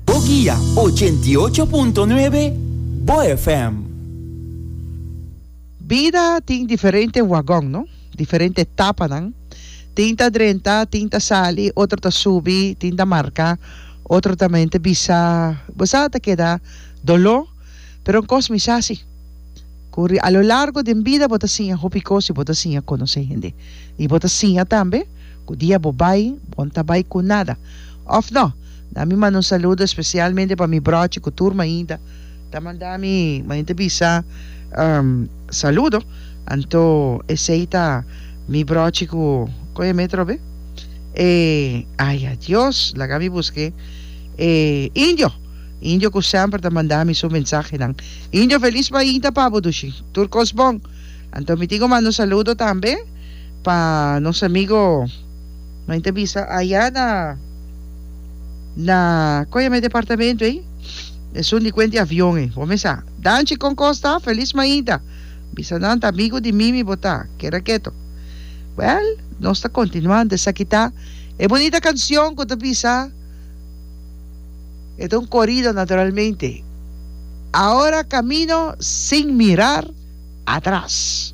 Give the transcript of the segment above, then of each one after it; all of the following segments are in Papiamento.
Bo guia ochenta i ocho punto nuebe Bo FM. Bida tin diferente wagon no, diferente etapanan, tin ta drenta, tin ta sali, otro ta subi, tin ta marca, otro ta mente bisa, bo sa ta keda doló, pero un cos mi sa si, cu a lo largo den bida bo ta siña hopi cos y bo ta siña conoce hende y bo ta siña tambe. Cu dia bo bay, bon ta bay cu nada. Of no? Na mi manda un saludo especialmente pa mi brochi cu tur mainta ta manda mi, mainta bisa saludo. Anto esey ta mi brochi cu, con e metro be? E, ay adios, laga mi busque e Indio, Indio cu semper ta manda mi su mensahenan. Indio, feliz mainta pa bo dushi. Tur cos bon. Anto mi tin cu manda un saludo tambe. pa nos amigo ma inta bisa aya na na koya me departamento ei esun di kuenti avion ei bo mesa danchi kon kosta felis mainta bisa nan ta amigo di mimi bo ta keda keto well nos ta kontinuan esaki ta e bonita kancion ku ta bisa e ta un korido naturalmente ahora kamino sin mirar Atras.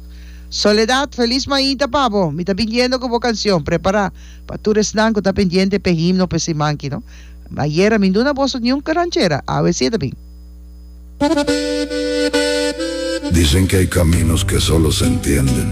Soledad, Felis mainta pa bo! Mi ta biniendo cu bo cancion. Prepara pa tur esnan cu ta pendiente p'e himno p'e siman ki no. Ayer a mi duna boso niun ranchera, awe si e ta bin. Dicen que hay caminos que solo se entienden.